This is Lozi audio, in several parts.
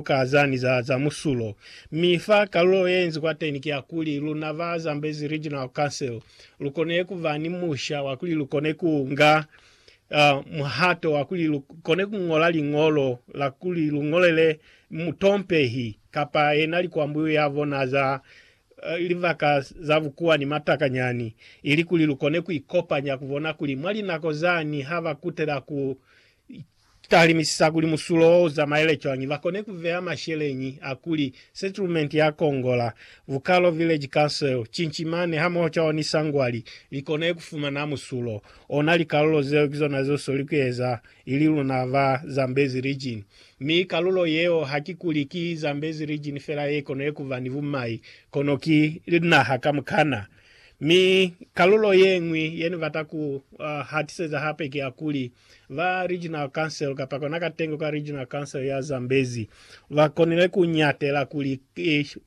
ka za ni za za musulo. Mi fa kalulo ye nzi kwateni ki ya kuli, luna ba Zambezi Regional Council lu kone ku ba ni musha wa kuli lu kone ku nga uh, muhato wa kuli lu kone ku ngola liñolo la kuli lu ngolele mutompehi kapa yena likwambuyu ya bona za uh, libaka za bukuwa ni matakanyani, ili kuli lu kone ku ikopanya ku bona kuli mwa linako zani ha ba kutela ku Talimisa kuli musulo wo uzamaele cwañi bakone kuveya masheleñi a kuli Settlement ya Kongola, Vukalo Village Council, Chinchimani hamoho Chaoni Sangwali likone kufumana musulo. Ona likalulo zeo kizona zesweli kueza ili luna ba Zambezi Region. Mi kalulo yeo hakikuli ki Zambezi Region fela yekone kuba ni bumai, kono ki linaha kamukana. Mi kalulo yeñwi yenibata ku hatiseza hape ki ya kuli, Ba Regional Council kapa kona katengo ka Regional Council ya Zambezi ba konile ku ñatela kuli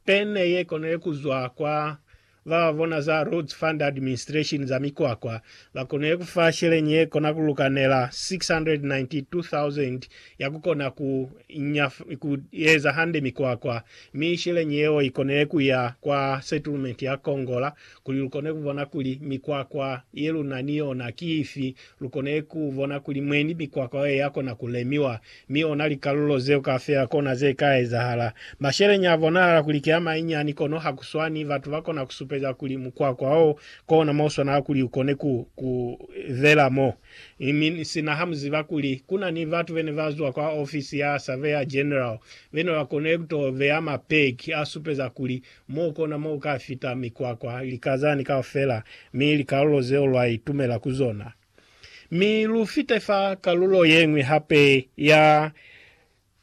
pe ne ye konile ku zwa kwa ba ba bona za Roads Fund Administration za mikwakwa, ba konile ku fa sheleñi ye kona ku lukanela 692,000 ya ku kona ku nya ku eza hande mikwakwa, mi sheleñi yeo i konile ku ya kwa settlement ya Kongola Kuli lukone kubona kuli mikwakwa yeluna ni yona ki ifi, lukone kubona kuli mwendi mikwakwa yeo yakona kulemiwa, mi ona likalulo zeo kaufela kona zeka ezahala. Masheleñi abonahala kuli ki amainyani, kono hakuswani. Batu bakona kusupeza kuli mukwakwa wo kona moswanela kuli ukone ku ku bela mo, mi sina hamuziba kuli kuna ni batu bene bazwa kwa ofisi ya Surveyor General bene bakonile kuto beya mapeki asupeza kuli Mo kona mo ka fita mikwakwa, likazani kaufela, mi likalulo zeo lwa itumela ku zona. Mi lu fite fa kalulo yeñwi hape ya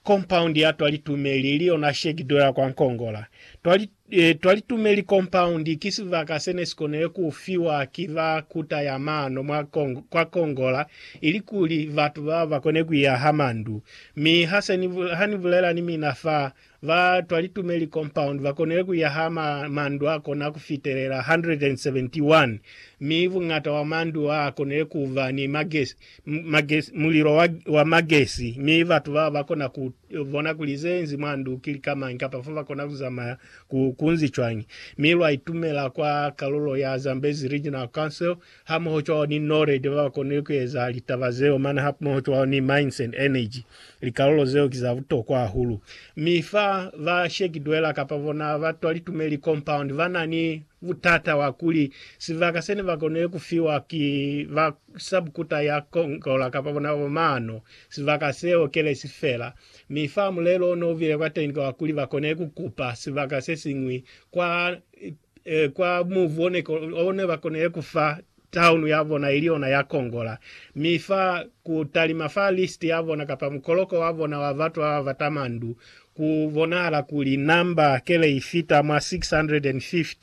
kompaundi ya twalitumeli, ili yona shegido ya kwa Nkongola. Twali, e, twalitumeli kompaundi ki sibaka sene sikonile ku fiwa ki ba kuta ya mano mwa Kong, kwa Kongola, ilikuli batu bao bakone kuyaha mandu. Mi hase ni, ha ni bulela ni mina fa Ba twa Litumeli Compound ba konile ku yaha ma, mandu a kona ku fitelela 171, mi buñata bwa mandu a konile ku ba ni magesi, magesi, mulilo wa, wa magesi, mi batu bao ba kona ku bona kuli ze enzi mwa ndu ki lika mañi kapa fo ba kona ku zamaya ku, kunzi cwañi. Mi lwa itumela kwa kalulo ya Zambezi Regional Council hamoho cwalo ni Nored baba konile kueza litaba zeo mane hamoho cwalo ni Mines and Energy. Likalolo zeo ki za butokwa hahulu. Mi fa ba Sheki Dweller kapa bona ba twa Litumeli Compound bana ni butata wa kuli sibaka sene ba konile kufiwa ki ba Subcuta ya Congola kapa bona baba Maano, sibaka seo kele si fela. Mi fa mulelo one ubile kwateñi ki wa kuli ba konile kukupa sibaka sesiñwi kwa kwa mubu one, one bakonile kufa taunu yabona ili yona ya kongola, mi fa ku talima fa list yabona kapa mukoloko wabona wa batu bababata mandu, ku bonahala kuli namba kele ifita mwa 650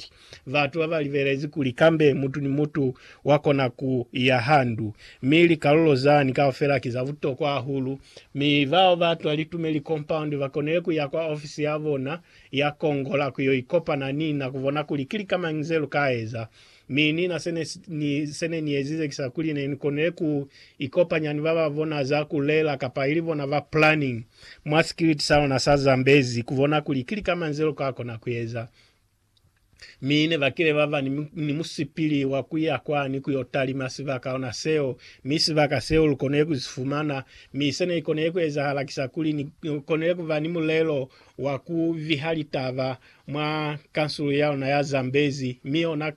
batu babalibelezi kuli kambe mutu ni mutu wakona ku iya ha ndu, mi likalulo zani kaufela ki za butokwa hahulu, mi bao batwa litumeli compound bakonile kuya kwa ofisi yabona Ya kongola ku yo ikopana ni na ku bona kuli ki lika mañi ze lu ka eza. Mi nina se ne ni, se ne ni ezize ki sa kuli ne ni konile ku ikopanya ni ba ba bona za ku lela kapa ili bona ba planning mwa sikiliti sa luna sa Zambezi ku bona kuli ki lika mañi ze lu ka kona ku eza. Mi ne ba kile ba ba ni, ni musipili wa ku ya kwani ku yo talima sibaka ona seo, mi sibaka seo lu konile ku si fumana. Mi se ne konile ku ezahala ki sa kuli ni konile ku ba ni mulelo wa ku viha litaba mwa kansulu ya luna ya Zambezi, mi ona,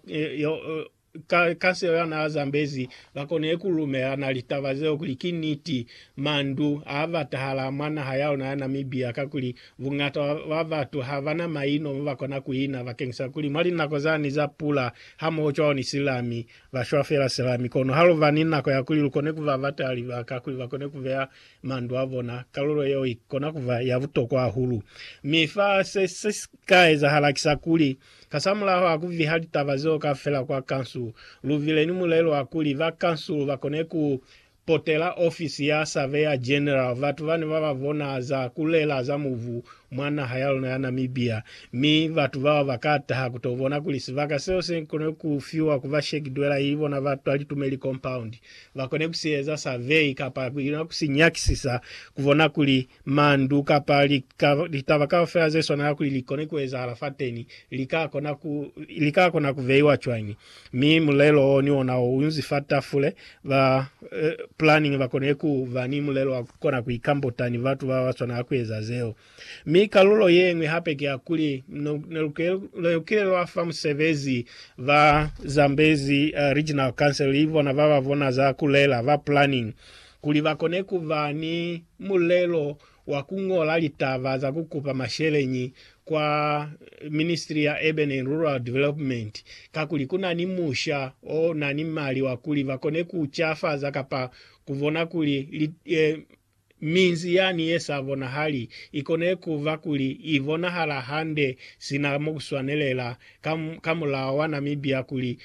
Ka, ka seo yana a zambezi, ba konile ku lumelana litaba zeo kuli ki niti. Mandu a batahala mwa naha ya luna ya Namibia, kakuli bungata bwa batu ha ba na maino mo ba kona ku ina, bakeñisa kuli mwa linako zani za pula, hamoho cwalo ni silami, ba shwa fela silami. Kono ha lu ba ni nako ya kuli lu kone ku ba batela libaka kuli ba kone ku beya mandu a bona, kalulo yeo i kona ku ba ya butokwa hahulu. Mi fa se, se si ka ezahala ki sa kuli, Kasamulaho a ku viha litaba zeo kaufela kwa kansulu, lu vile ni mulelo wa kuli ba kansulu ba kone ku potela ofisi ya Surveyor General batu bani ba ba bona za ku lela za mubu mwa naha ya luna ya Namibia, mi batu bao ba ka taha ku to bona kuli sibaka seo se kone ku fiwa ku ba Shek Dwela ili bona ba twa Litumeli Compound ba kone ku si eza survey kapa ku ina ku si nyakisisa ku bona kuli Mandu kapa litaba kaufela ze swanela kuli li kone ku ezahala fateni li ka kona ku li ka kona ku veiwa cwañi? Mi mulelo wo ni ona u nzi fa tafule. Ba planning ba konile ku ba ni mulelo wa ku kona ku ikambota ni batu ba ba swanela ku eza zeo. Mi kalulo ye ñwi hape ki ya kuli ne lu kile lwa fa musebezi ba Zambezi Regional Council, ki bona ba ba bona za ku lela, ba planning, Kuli ba kone ku ba ni mulelo wa ku ñola litaba za ku kupa masheleñi kwa Ministry ya Urban and Rural Development, kakuli ku na ni musha o na ni mali wa kuli ba kone ku cafaza kapa ku bona kuli li, e, minzi yani ye sa bonahali i kone ku ba kuli i bonahala hande sina mo ku swanelela, ka, ka mulao wa Namibia kuli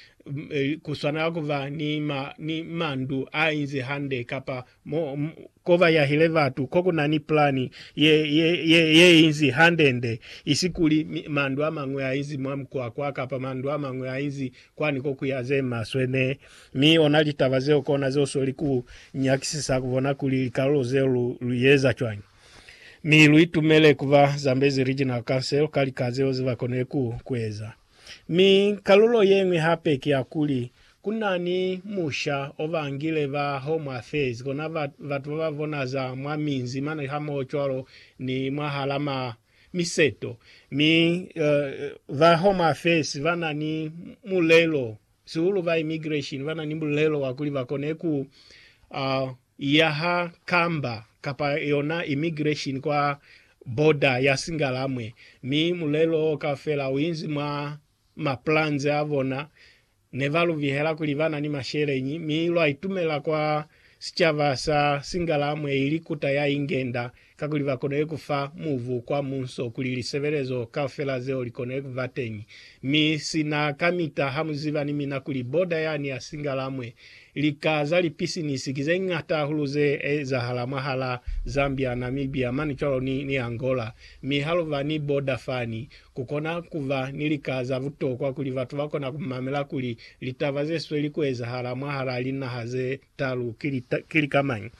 ku swanela ku ba ni, ma, ni mandu a inzi hande, kapa mo, ko ba yahile batu, ko ku na ni plani ye, ye, ye, ye inzi handende, isi kuli mandu a mañwi a inzi mwa mukwakwa, kapa mandu a mañwi a inzi kwani ko ku ya ze maswe. Ne, mi ona litaba zeo kona ze u sweli ku nyakisisa ku bona kuli likalulo zeo lu, lu yeza cwañi. Mi lu itumele ku ba Zambezi Regional Council ka lika zeo ze ba konile ku, ku eza. Mi kalulo yeñwi hape ki ya kuli, ku na ni musha o ba ngile ba Home Affairs, kona batu ba ba bona za mwa minzi mane hamoho cwalo ni mwahala ma miseto. Mi ba Home Affairs ba na ni mulelo, sihulu ba Immigration, ba na ni mulelo wa kuli ba kone ku ya ha kamba kapa yona immigration kwa border ya Singalamwe mi mulelo o kaufela u inzi mwa ma plans a bona. Ne ba lu bihela kuli ba na ni masheleñi mi lwa itumela kwa sicaba sa Singalamwe ili kuta ya ingenda Kakuli bakonile kufa mubu kwa munso kuli lisebelezo kaufela zeo likonile kuba teñi. Mi sina kamita hamuziba ni mina kuli boda yani ya Singalamwe, lika za lipisinisi ki zeñata hahulu ze ezahala mwahala Zambia, Namibia, mane cwalo ni, ni Angola. Mi haluba ni boda fani, kukona kuba ni lika za butokwa kuli batu bakona kumamela kuli litaba zesweli kuezahala mwahala linaha ze, Talu ki lika mañi,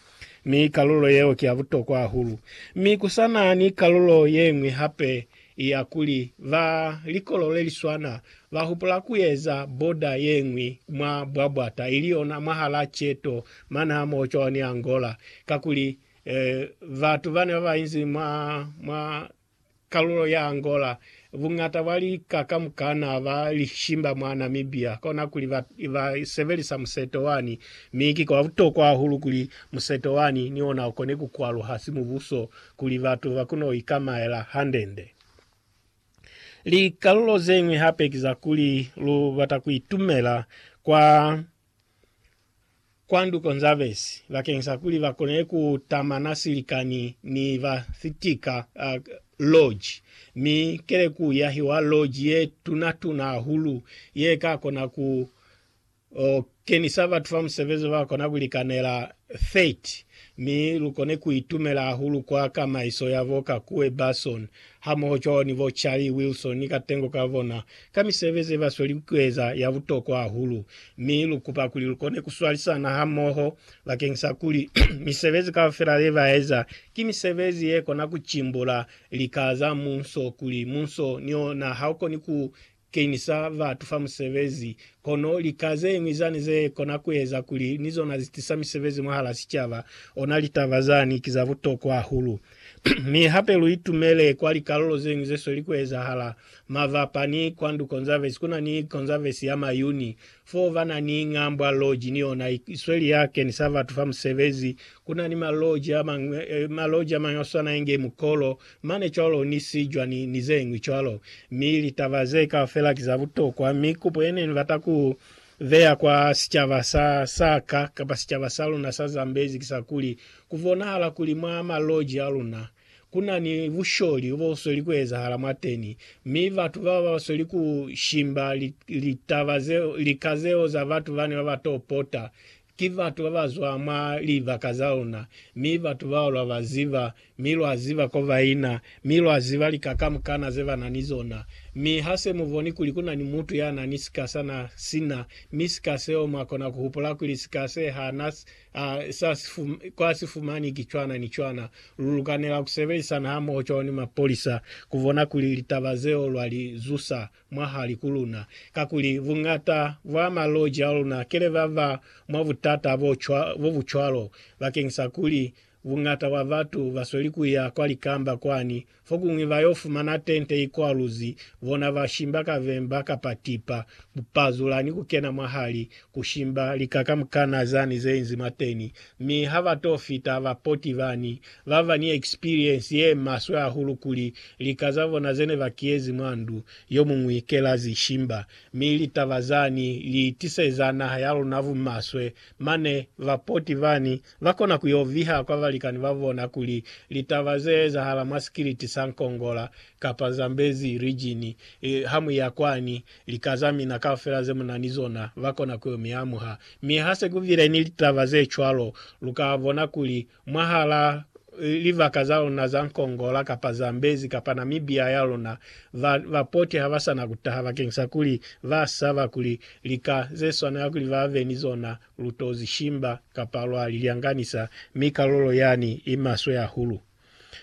mi kalulo yeo ki ya butokwa hahulu. Mi ku sa na ni kalulo ye ñwi hape ya kuli, ba likolo le li swana ba hupula ku eza boda ye ñwi mwa bwabwata, ili yona mwahal'a Cheto mane hamohocwaho ni Angola, kakuli, eh, batu bane ba ba inzi mwa, mwa kalulo ya Angola, buñata bwa lika kamukana ba lishimba mwa Namibia, kona kuli ba, ba sebelisa museto wani. Mi ki kwa butokwa hahulu kuli museto wani ni ona ukone ku kwaluha simubuso kuli batu ba kono ikamaela hande-nde. Likalulo zeñwi hape ki za kuli lu bata ku itumela kwa kwa nduko nza besi bakeng sa kuli ba kone ku tamana silikani ni ba sitika uh, lodge, mi kele ku yahiwa lodge ye tuna tuna hahulu ye ka kona ku o kenisa batu ba musebezi ba kona ku likanela 30 mi lu kone ku itumela hahulu kwa kamaiso ya bo ka kuwe Basson hamoho cwalo ni bo Charlie Wilson ni katengo ka bona ka misebezi ye ba sweli ku eza ya butokwa hahulu, mi lu kupa kuli lu kone ku swalisana hamoho bakeng sa kuli misebezi kaufela ye ba eza ki misebezi ye kona ku cimbula lika za munso, kuli munso ni ona ha u koni ku kenisa batu fa musebezi, kono lika ze ñwi zani ze kona ku eza kuli ni zona zi tisa misebezi mwahala sicaba. Ona litaba zani ki za butokwa hahulu. Mi hape lu itumele kwa likalulo ze ñwi ze sweli ku ezahala. Mavapa ni Kwandu Conservancy kuna ni Conservancy ya Mayuni foo bana ni Ngambwa Lodge ni yona isweli ya keni sa batu fa musebezi. Kuna ni ma lodge amañwi ma lodge amañwi aswana inge Mukolo mane cwalo ni Sijwa ni ni zeñwi cwalo. Mi litaba zee kaufela ki za butokwa mi kupo yene nibata ku beya kwa sicaba sa saka kapa sicaba sa luna sa Zambezi kisa kuli ku bonahala kuli mwa ma lodge aluna Ku na ni busholi bo sweli ku ezahala mwateni, mi batu bao ba sweli ku shimba litaba zeo, lika zeo za batu bani ba ba to pota. Ki batu ba ba zwa mwa libaka za luna, mi batu bao lwa ba ziba, mi lwa ziba ko ba ina, mi lwa ziba lika kamukana ze ba na ni zona. Mi ha se mu boni kuli ku na ni mutu ya na ni sika sa na si na, mi sika seo mwa kona ku hupula kuli sika se ha na A sa si fum, kwa si fumani ki cwana ni cwana. Lu lukanela ku sebelisana hamoho cwalo ni mapolisa ku bona kuli litaba zeo lwa li zusa mwahali ku luna. Kakuli, buñata bwa maloji a luna kele ba ba mwa butata bo, cwa, bo bu cwalo, bakeñisa kuli buñata bwa batu ba sweli ku ya kwa likamba kwani Fokuñwi ba yo fumana tente ikwaluzi, bona ba shimba ka vemba kapa tipa, ku pazula ni ku kena mwahali, ku shimba lika kamukana zani ze inzi mwateni. Mi ha ba to fita ba poti bani, ba ba ni ekspiriensi ye maswe hahulu kuli lika za bona ze ne ba kiyezi mwa ndu yomuñwi ke la zi shimba. Mi litaba zani li tiseza naha ya luna bumaswe Mane bapoti bani ba kona ku yo viha kwa balikani ba bona kuli litaba ze ezahala mwa sikiliti sa Nkongola kapa Zambezi Region, ha mu ya kwani, lika za mina kaufela ze mu na ni zona ba kona ku yo mi amuha. Mi ha se ku bile ni litaba ze cwalo, lu ka bona kuli Mwahal'a libaka za luna za Nkongola kapa Zambezi kapa Namibia ya luna, ba, ba poti ha ba sa na ku taha bakeng sa kuli ba saba kuli lika ze swanela kuli ba be ni zona lu t'o zi shimba kapa lwa li lyanganisa, mi kalulo yani i maswe hahulu.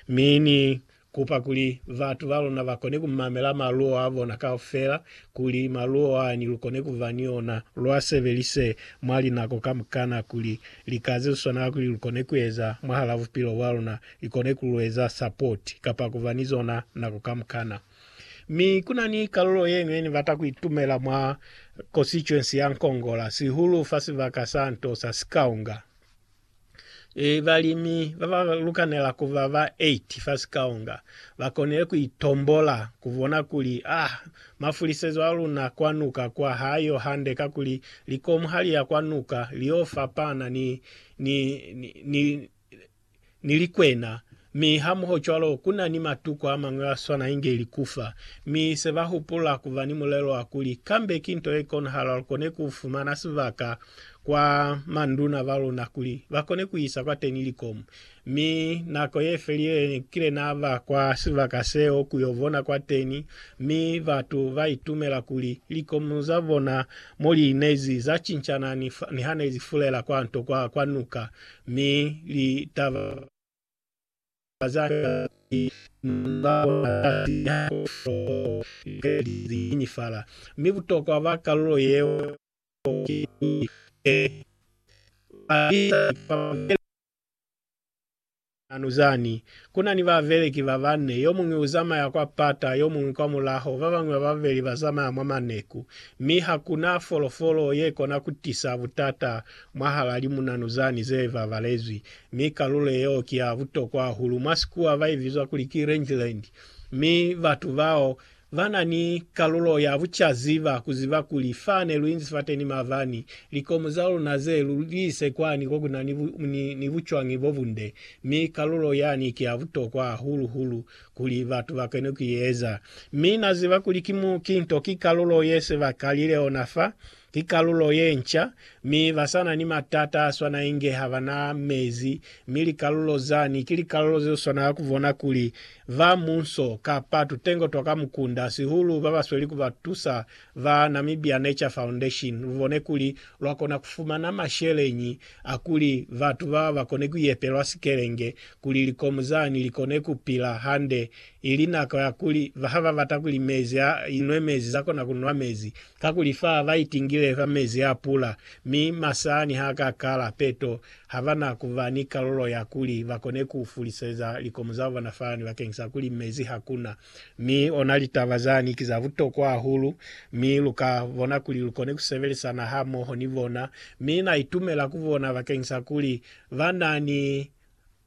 Mi ni Kupa kuli batu ba luna ba kone ku mamela maluo a bona kaufela, kuli maluo ani lu kone ku ba ni ona, lu a sebelise mwa linako kamukana, kuli lika ze swana kuli lu kone ku eza mwahala bupilo bwa luna, li kone ku lu eza support, kapa ku ba ni zona nako kamukana. Mi ku na ni kalulo ye ñwi ye ni bata ku itumela mwa Constituency ya Nkongola, sihulu fa sibaka sa nto sa Sikaunga. e, balimi ba ba lukanela ku ba ba 8 fa sikaonga ba konile ku itombola, ku bona kuli, ah, mafulisezo a luna kwa nuka kwa ha yo hande, kakuli likomu ha li ya kwa nuka li yo fapana ni, ni, ni, ni, ni likwena Mi hamohocwalo, ku na ni matuko a mañwi a swana inge likufa. Mi se ba hupula ku ba ni mulelo wa kuli, Kambe ki nto ye konahala lu kone ku fumana sibaka kwa manduna ba luna kuli ba kone ku isa kwateni likomu. Mi nako ye felile ne ni kile na ba kwa sibaka seo ku yo bona kwateni, mi batu ba itumela kuli likomu za bona mo li inezi za cincana ni ha ne li fulela kwa nto kwa, kwa nuka, mi li taba. Ka za niti, ni nga bona kasi ni ha ku f'o lika li zinyifala. Mi butokwa bwa kalulo yeo ki kuli, He! Ba isa ni kwa babeleki ba nanu zani. Ku na ni babeleki ba banne, yo muñwi u zamaya kwa pata, yo muñwi kwa mulaho, ba bañwi ba babeli ba zamaya mwa maneku. Mi ha ku na folofolo ye kona ku tisa butata mwahal'a limunanu zani ze babalezwi, mi kalulo yeo ki ya butokwa hahulu. Mwa sikuwa ba i bizwa kuli ki Rangeland, mi batu bao ba na ni kalulo ya bucaziba ku ziba kuli fane lu inzi fateni mabani likomu za luna ze lu li ise kwani ko ku na ni, ni, ni bucwañi bo bunde, mi kalulo yani ki ya butokwa hahulu hulu kuli batu ba kone ku i eza. Mi na ziba kuli ki mu, ki nto, ki kalulo ye se ba kalile ona fa, Ki kalulo ye nca, mi ba sa na ni matata a swana inge ha ba na mezi, mi likalulo zani ki likalulo ze swana ka ku bona kuli ba munso kapa tutengo twa ka mukunda, sihulu ba ba sweli ku ba tusa ba Namibia Nature Foundation, lu bone kuli lwa kona ku fumana masheleñi a kuli batu ba ba kone ku yepelwa sikelenge kuli likomu zani li kone ku pila hande ili nako ya kuli ha ba bata kuli mezi a inwe mezi, za kona ku nwa mezi. Kakuli fa ba itingile ka mezi a pula, mi masani ha ka kala, peto ha ba na ku ba ni kalulo ya kuli ba kone ku fuliseza likomo za bona fani bakeng sa kuli mezi ha ku na. Mi ona litaba zani ki za butokwa hahulu, mi lu ka bona kuli lu kone ku sebelisana hamoho ni bona. Mi na itumela ku bona bakeng sa kuli ba na ni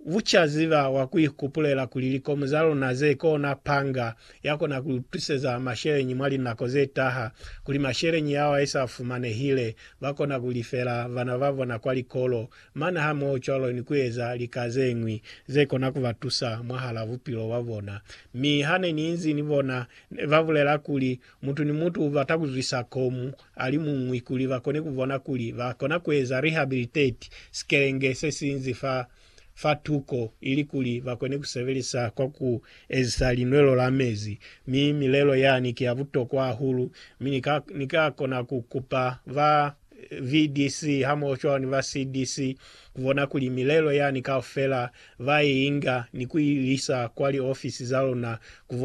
Bucaziba bwa ku ikupulela kuli likomu za luna ze kona panga ya kona ku lu twiseza masheleñi mwa linako ze taha, kuli masheleñi yao a sa fumanehile, ba kona ku lifela bana ba bona kwa likolo, mane hamohocwalo ni ku eza lika ze ñwi ze kona ku ba tusa mwahal'a bupilo bwa bona. Mi ha ne ni inzi ni bona, ne ba bulela kuli, Mutu ni mutu ubata kuzwisa komu alimuñwi kuli bakone kubona kuli bakona kueza rehabilitate sikelenge sesinzi fa fa tuko ilikuli bakone kusebelisa kwa ku ezisa linwelo la mezi. Mi milelo yani ki ya butokwa hahulu, mi ni ka ni ka kona ku kupa ba VDC hamoho cwalo ni ba CDC kubona kuli milelo yani kaufela ba i inga ni ku i lisa kwa liofisi za luna kubona